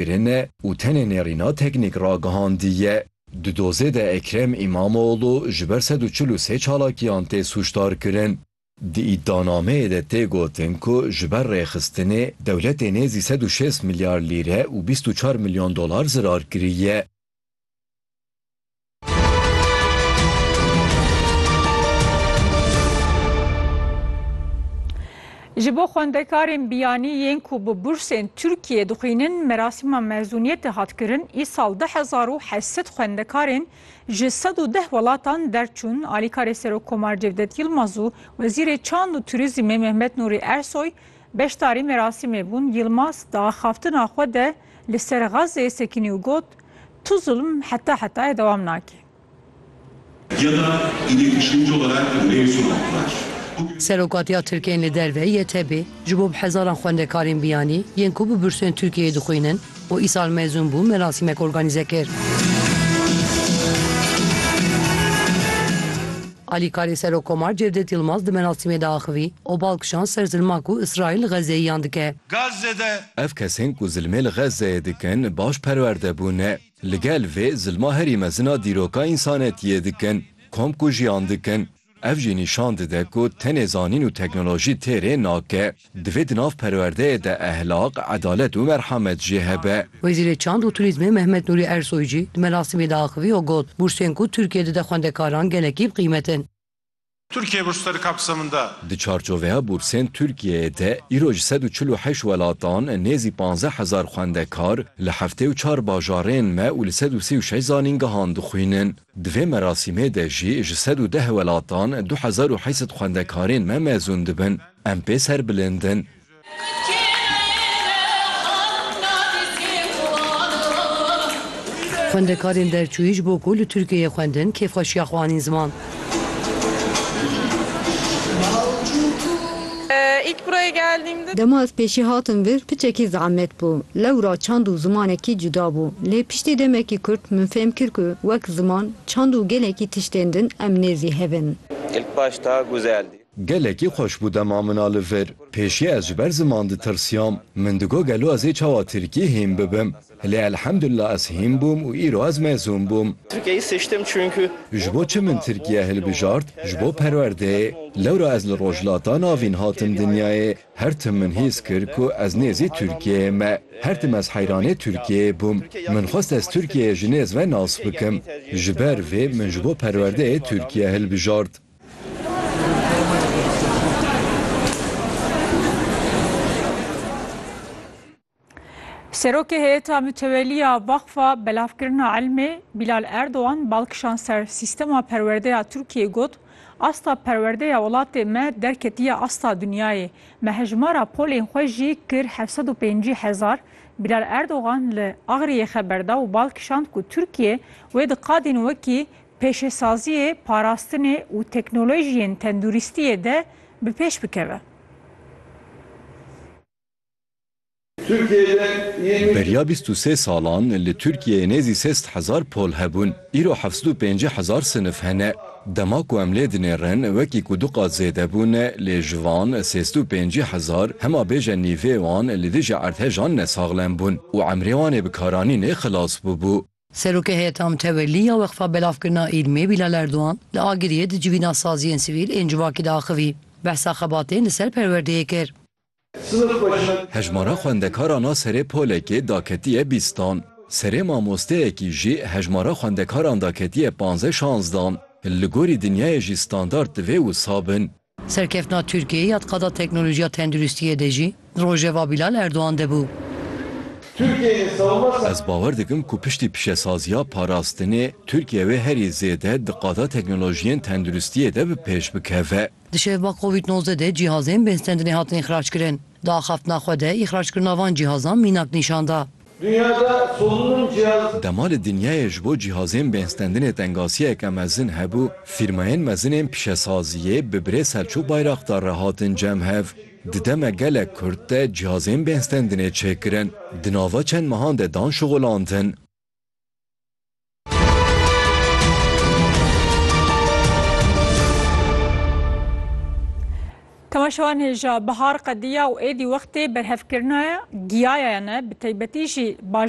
Kirine û tenê nêrîna teknîk ragihandiye. Di dozê de Ekrem Îmamoglû ji ber sed û çil û sê çalakiyan tê sûcdarkirin. Di îdianameyê de tê gotin ku ji ber rêxistinê dewletê nêzî sed û şêst milyar lîre û bîst û çar milyon dolar zirar kiriye. Ji bo xwendekarên biyanî yên ku bi bursên Tirkiyê dixwînin merasîma mezûniyetê hat kirin, îsal du hezar û heşt sed xwendekarên ji sed û deh welatan derçûn. Alîkarê Serokkomar Cevdet Yilmaz û Wezîrê Çand û Turîzîmê Mehmet Nûrî Ersoy beşdarî merasîmê bûn. Yilmaz di axaftina xwe de, Li ser Gazê sekînî û got, Tu zulm heta hetayê dewam nake. Serokatiya Tirkiye yên li derve, YTB, ji bo bi hezaran xwendekarên biyanî yên ku bi bursên Tirkiyeyê dixwînin û îsal mezûn bûn merasîmek organîze kir. Alîkarê Serokomar Cevdet Yilmaz di merasîmê de axivî û bal kişand ser zilma ku Îsraîl li Xezzeyîyan dike. Gazze de. Ev kesên ku zilmê li Xezzeyê dikin baş perwerde bûne. Li gel vê zilma herî mezin a dîroka însanetiyê dikin, kom kujiyan dikin. Ev jî nîşan dide ku tenê zanîn û teknolojî têrê nake. Divê di nav perwerdeyê de ehlaq, edalet û merhamet jî hebe. Wezîrê Çand û Turîzmê Mehmet Nûrî Ersoy jî di merasimê de axivî û got, Bursên ku Tirkiye dide xwendekaran gelekî bi qîmet in. Tirkiye birçî serê kapsamında. Di çarçoveya bursên Tirkiyeyê de îro ji sed û çil û heşt welatan nêzî panzdeh hezar xwendekar li heftê û çar bajarên me û li sed û sî û şeş zanîngehan dixwînin. Di vê merasimê de jî ji sed û deh welatan du hezar û heşt sed xwendekarên me mezûn dibin. Em pê ser bilind in. Xwendekarên derçûyî ji bo ku li Tirkiyeyê xwendin kêfxweşiya xwe anîn ziman. Dema ez pêşî hatim vir piçekî zehmet bû. Lewra çand û zimanekî cuda bû. Lê piştî demekî kurt min fêm kir ku wek ziman, çand û gelekî tiştên din em nêzî hev in. Gelekî xweş bû dema min a li vir. Pêşî ez ji ber ziman ditirsiyam. Min digot gelo ez ê çawa tirkî hîn bibim. Lê elhemdulillah ez hîn bûm û îro ez mezûn bûm. Tirkiyeyî seçtim çünkû. Ji bo çi min tirkiye hilbijart? Ji bo perwerdeyê. Lewra ez li Rojhilata Navîn hatim dinyayê. Her tim min hîs kir ku ez nêzî Tirkiyeyê me. Her tim ez heyranê Tirkiyeyê bûm. Min xwest ez Tirkiyeyê ji nêz ve nas bikim. Ji ber vê min ji bo perwerdeyê Tirkiye hilbijart. Serokê Heyeta Mütewelî ya Vaxfa Belavkirina Elmê Bilal Erdogan bal kişand ser sîstema perwerdeya Tirkiyeyê got, Asta perwerdeya welatê me derketiye asta dinyayê. Me hejmara polên xwe jî kir heft sed û pêncî hezar. Bilal Erdogan li Agriyê xeber da û bal kişand ku Tirkiye wê di qadên wekî pêşesaziyê, parastinê û teknolojiyên tenduristiyê de bi pêş bikeve. Beriya bîst û sê salan li Tirkiyeyê nêzî sê sed hezar pol hebûn, îro heft sed û pêncî hezar sinif hene. Dema ku em lê dinêrin wekî ku du qat zêde bûn lê ji van sê sed û pêncî hezar hema bêje nîvê wan li dijî erdhejan nesaxlem bûn û emrê wan ê bikaranînê xilas bûbû. Serokê Heyeta Mutewellî ya Weqfa Belavkirina Îlmê Bîlal Erdogan li Agiriyê di civîna saziyên sivîl ên civakî de axivî. Behsa xebatên li ser perwerdeyê kir. Hejmara xwendekaran a serê polekê da ketiye bîstan. Serê mamosteyekî jî hejmara xwendekaran da ketiye panze-şanzdan. Li gorî dinyayê jî standard divê wisa bin. Serkeftina Tirkiyeyê ya di qada teknolojiya tenduristiyê de jî rojeva Bilal Erdogan de bû. Ez bawer dikim ku piştî pişesaziya parastinê, Tirkiye wê herî zêde di qada teknolojiyên tenduristiyê de bi pêş bikeve. Di şevba covid nozdeh de cihazên bêhsdendinê hatine îxrackirin. Di axaftina xwe de îxrackirina van cihazan mînak nîşan da. Dünyada solunum cihazı. Dema li dinyayê ji bo cihazên bêhnstendinê tengasiyeke mezin hebû, fîrmayên mezin ên pişesaziyê bi birê Selçûk Bayraktar re hatin cem hev. Di deme gelek kurt de cihazên bêhnstendinê çêkirin. Di nava çend mehan de dan şixulandin. Temaşewan hêja bihar qediya û êdî wextê berhevkirina giyayayane bi taybetî jî bajar